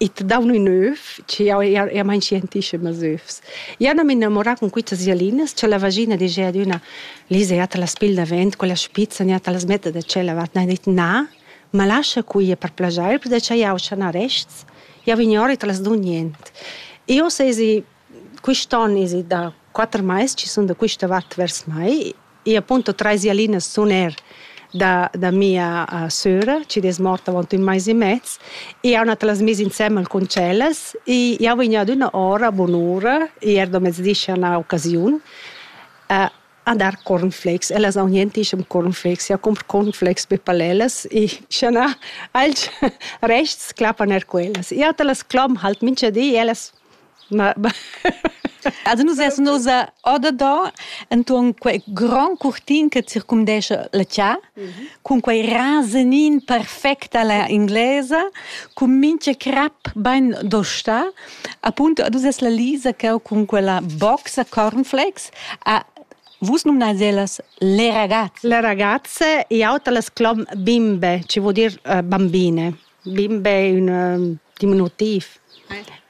Id daun ün öv, che jau eir eir main scientischem als övs. Jau n'am innamorà cun quitas giallinas, cha la vagina digia adüna: Lisa, ja te las pigl davent, quella spizza, ja te las metta da tschella vart. Na, dit na, ma lascha quia per plaschair, perche cha jau scha na rests. Jau ignoro e te las dun niente. Eu sezi quist on esa i da quatter mais chi sun da quista vart vers mai e appunto trais jalinas sun eir da da mia söra chi'd es morta avaunt ün mais e mez e jau andà las mis insembel cun tschellas e jau vegn adüna ora a bun'ura e eir da mezdi schi an ha occasiun a dar cornflakes. Ellas haun nientischem cornflakes. Jau cumpr cornflakes be palellas e schi an ha alch rests clappan eir quellas. Jau ta las clom halt mincha di e ellas Also nus essan oz odadan enturn quei grand curtin che circumdescha la tia, cun quei rasenin perfect alla inglesa, cun mintga crap bein dosta, appunto ad uss es la Lisa cheu cun quella boxa cornflakes a Vus numnais ellas le ragazze. Le ragazze e auter las clom bimbe, ci vuol dir uh, bambine. Bimbe ün diminutiv.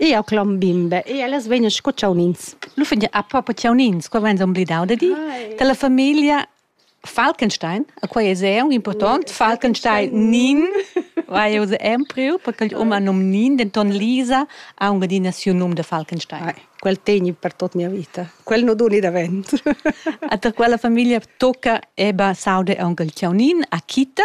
Eau clom bimbe e ellas vegnan sco chaunins. L'uffant ha propo chaunins, qua vain s'ombledau da dir. Dalla famiglia Falkenstein, a quai es eau important, Falkenstein Nin, vai eau se empriu, perché il um ha nom Nin, denton Lisa ha aunc adina siu num da Falkenstein. Quel tegni per tot mia vita. Quel non doni davent. Ater quella famiglia tocca Eba, Saude e aunc il Chaunin, a Kita,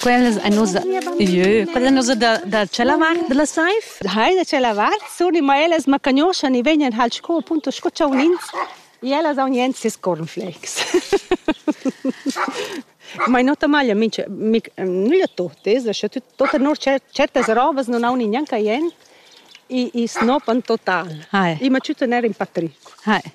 Quellas ein nus jeu, quella nus da, da tschella vart dalla saiv. Hai da tschella vart sur ma ellas ma cagnoschan e vegnan hal sco appunto sco chaunins e ellas haun jens ses cornflakes. Ma in ota maglia minch mic nüglia totes, scha tut tota nur certas robas non haun gnanca jent, i i snopan total. Hai. I ma tütten er in patric. Hai.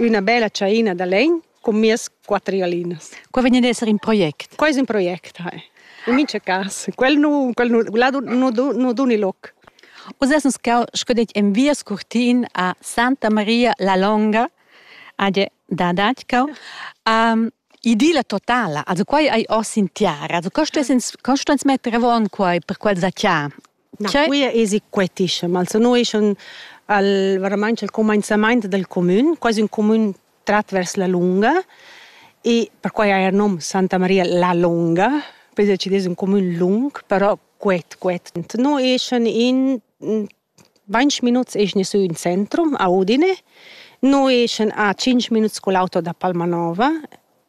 üna bella tschaina da legn cun mias quatter glinas. Quai vegn ad esser in project? Quai es ün project, hai. In mincha cas. Quel nu, quel nu, là nu, nu duni loc. Uss essan sco detg en via scurtin a Santa Maria la Longa, a da Datschau. Um, idilla totala, also quai hai oss in tiara, also co stess ins, co sto ins metter avon quai per quel zacchà? Na, quia esi quetischem, also no es un al varamaing al cumainzamaint dal cumün, quasi ün cumün trat vers la lunga e perquai ha eir nom Santa Maria la Lunga, poi decides ün cumün lung, però quet, quet. No eschan in vainch minuts eschna sü in centrum a Udine, no eschan a tschinch minuts cul auto da Palmanova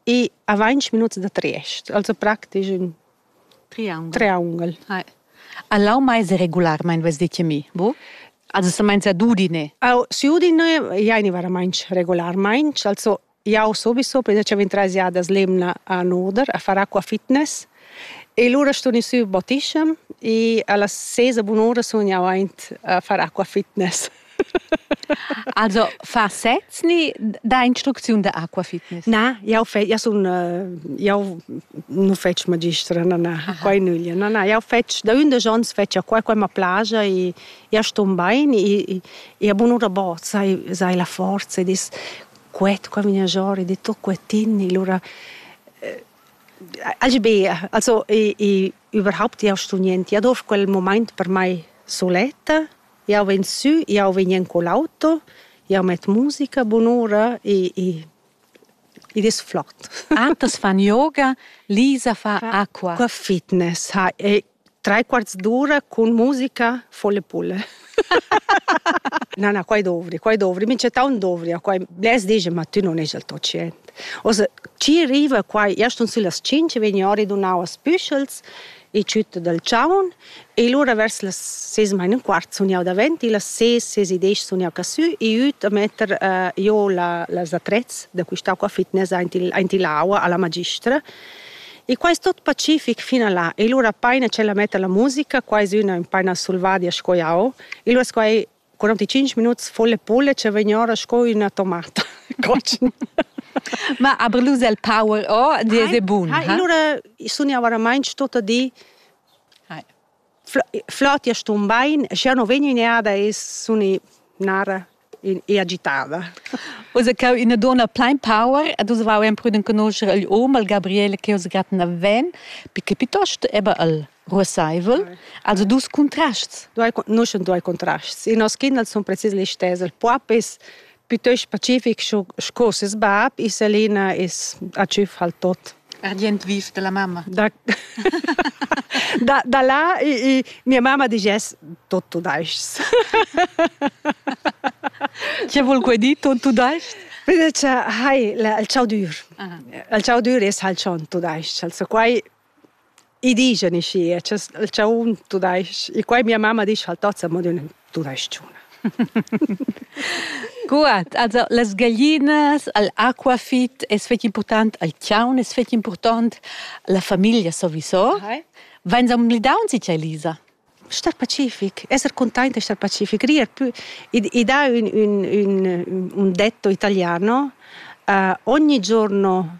e a vainch minuts da Triest, also praktisch ün Triaungel. A lau mais regularmaing vess dit a mi, bu? Also semainza d'Udine. Au, si Udine jaini varamaing regularmaing, also jau sobiso prendiacha 23 jadas l'emna a Noder a far acqua fitness e lura stun i sü bottischem e a las ses e bun'ura sun jau aint a far acqua fitness. Also fa sez ni da instrucziun da acqua fitness? Na, jau fe, jau sun jau nu fetsch magistra, na na, quai nüglia, na na, jau fetsch da ündesch ons fetsch acqua, quai ma plaja e ja ston bain e e a bunura bo sai sai la forza ed es quet qua vegna giò ed è tot quetin e lura Agi be, also i, i überhaupt jau sto niente, ad ov quel moment per mai soletta Jau vegn sü, jau vegn en quell'auto, jau met musica bunura e, e id es flot. Antas fan yoga, Lisa fa acqua. Qua fitness ha e tre quarts d'ora cun musica folle pulle. Na, na, quai dovri, quai dovri. Mi c'è taunt dovria quai. Blers digen, ma tu non esi il tuo cient. Also, ci arriva quai, io sto sü las 5, vegn ori dunau as püschels e tschütta dal chaun e lura vers las ses main e quart sun jau davent e las ses ses e desch sun jau casü e üt a metter uh, jo la, las attrezz da quistà qua fitness aint il, aint l'aua alla magistra E quai è tot pacific fino a là. E lura paina c'è la metta la musica, qua è una paina sulvadia sco jau. E lura sco 45 minuts volle polle che vegn ora sco üna tomata cotschen. Ma aber lose el power oh die de bun. Ha allora sun io veramente tutto di flot ja stun bein, sche no vegn in ada e suni nara e agitava. Usa cau ina donna plein power, ad usa vau en pruden conoscere il om, al Gabriele che usa gratten a ven, perché piuttosto eba al ruossaivel, also dus contrasts. Due, noi sun due contrasts. I nos kindels sun precis le stess. Il puap es piuttost pacific sco ses bab, e Selina es a tschüf al tot. Ardient viv della mamma. Da, da, da là, e, e mia mamma diges tutto daist. Che vuol quei dir tutto daist? Invece, hai, il ciao dur. Il ciao dur es halt schon tudais. Also quai I dischan i schi, che il chaun tudais-ch, e quai mia mamma disch al tat, mo d'ün tudais-chuna. Cuat, also las gaglinas, al aquafit es fetg important, al chaun es fetg important, la famiglia sowieso. Ahai. Vains amblidauns i cha Elisa? Star pacific, esser content e star pacific, rier più e dà un un un un detto italiano, uh, ogni giorno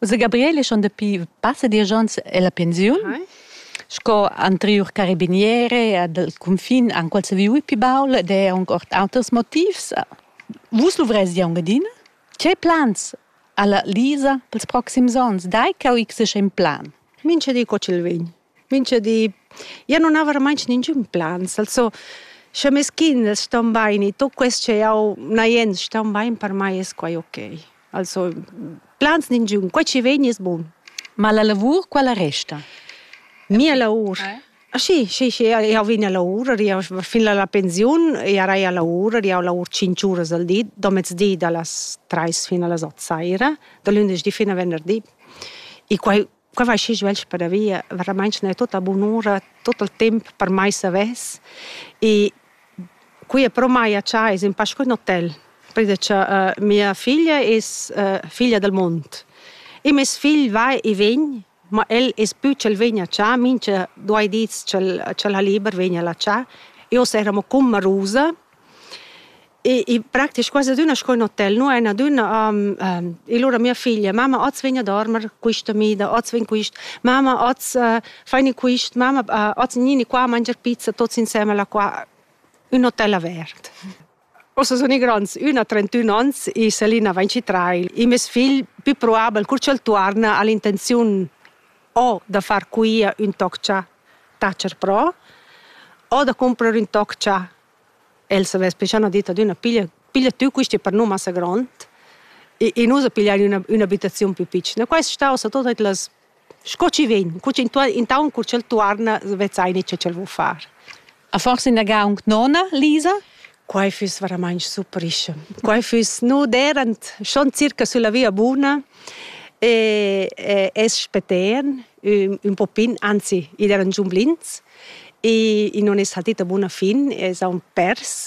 Ussa Gabriele schon dapi passa diesch onns ella pensiun. Hai. Sco anteriur carabiniere dal cunfin han quels viu pi baul ed è aunc ord auters motivs. Vus luvrezi aunc adina? Ce plans alla Lisa pels proxims onns? Dai ch'eu x in plan. Mincha di co ch'el vegn. Mincha di. Jeu nun aver mai ningün plans, also sche mes kinders ston baini, tut quest che jau n'ha jens ston bain, per mai es quai okay. Also plans ningün, quai chi vegn es bun. Ma la lavur quella resta? Mia lavur? Schi, schi, schi, jau vegn a lavur, ed jau fin a la pensiun jarei a lavur, ed jau lavur tschinch uras al di, do mezdi da las trais fin a las ot saira, da lündeschdi fin a venderdi. E quai Quai vai schi svelt padavia, veramaing ne tutta bunura, tut il temp per mai savess. E quia però m'haja cha es in pa scu ün hotel, perché cha uh, mia figlia es uh, figlia del mond. E meis figl va e vegn, ma el es pü ch'el vegna cha, mincha duai dis ch'el ch'el ha liber vegna là cha. Io saremo cun Marusa E, e praktisch quasi adüna sco in hotel, nu ein adüna um, um, e lura mia figlia, mama, oz vegn a dormer quista mida, oz vegn quist, mama, oz uh, faini quist, mama, uh, oz gnini qua a mangiar pizza, tots insemmel qua, un hotel avert. Ossa sun i grands, üna ha 31 ans e Selina va in citrail. E mes figl, più probabel, cur ch'el tuorna, ha l'intenziun o da far quia ün toc cha tacher pro o da cumprer ün toc cha el savess poi cha n'ha dit ad üna piglia piglia tü quista per nu massa grond e e nu sa pigliar üna ün'abitaziun plü pitschna. Quai es stà sa tuot las sco chi vegn, cur chi intuorn intaunt cur ch'el tuorna vezzaini cha ch'el vo far. A forsa inaga aunc nona, Lisa? Quai füss veramaing surprischa. Quai füss nu derant schon circa sulla via buna e, e es spetern ün, ün po pin, anzi, id eran giun blins e, e non es saltita buna fin, es aun pers,